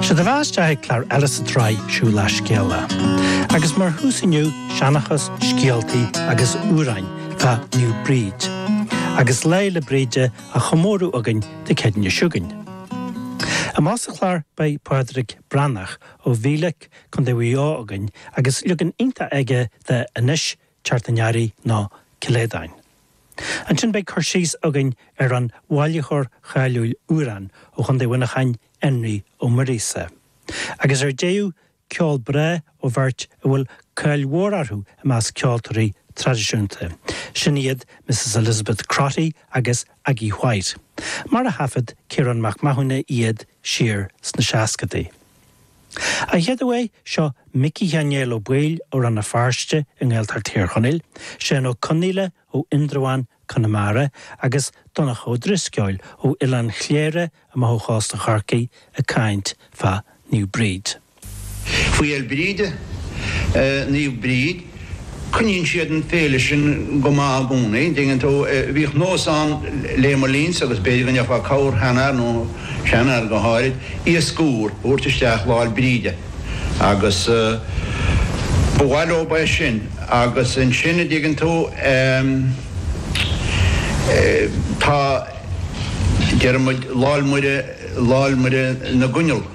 Sé do bheatha isteach ag clár eile sa tsraith Siúlach Scéalach. Agus mar thús inniu, seanachas, scéaltaí agus amhráin fá Naomh Bríd. Agus Lá Fhéile Bríde á chomóradh againn Dé Céadaoin seo chugainn. Amach sa chlár beidh Pádraig Breathnach ó Mhíleac, Contae Mhaigh Eo againn agus leagan iontach aige de Anois teacht an earraigh nó Cill Aodáin. Ansin beidh cur síos againn ar an bhailitheoir cháiliúil amhrán ó Chontae Mhuineacháin, Énrí Ó Muirgheasa. Agus ar deireadh, ceol breá ó bheirt a bhfuil cáil mhór orthu i measc ceoltóirí traidisiúnta, sin iad Misses Elizabeth Crotty agus Aggie Whyte, mar a thaifead Ciarán Mac Mathúna iad siar sna seascadaí. A chéaduair, seo Micí Sheáin Néill Ó Baoill ó Rann na Feirste i nGaeltacht Thír Chonaill, Seán Ó Conghaile ó Indreabhán, Conamara, agus Donncha Ó Drisceoil ó Oileán Chléire amach ó chósta Chorcaí ag caint fá Naomh Bríd. Faoi ar Bríde? Naomh Bríd? Coinníonn siad an féile sin go maith i gcónaí, dtuigeann tú. Bhíodh nós ann le mo linnse, agus b'fhéidir go n-abrófá corrsheanfhear, nó seanfhear go háirid, iasc úr a thabhairt isteach Lá'l Bríde. Agus ba mhaith leob é sin. Agus ansin, a' dtuigeann tú, em, tá, deir muid Lá'l Muire, Lá'l Muire na gCoinneal.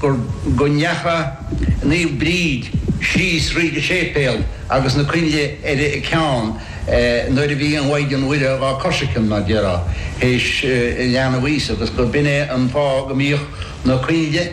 go ndeachaigh Naomh Bríd síos thríd an séipéal agus na coinnle ar a ceann nuair a bhí an Mhaighdean Mhuire dhá coisricean, mar déarfá, théis leanbh Íosa, agus gur b'in é an fáth go mbíodh na coinnle.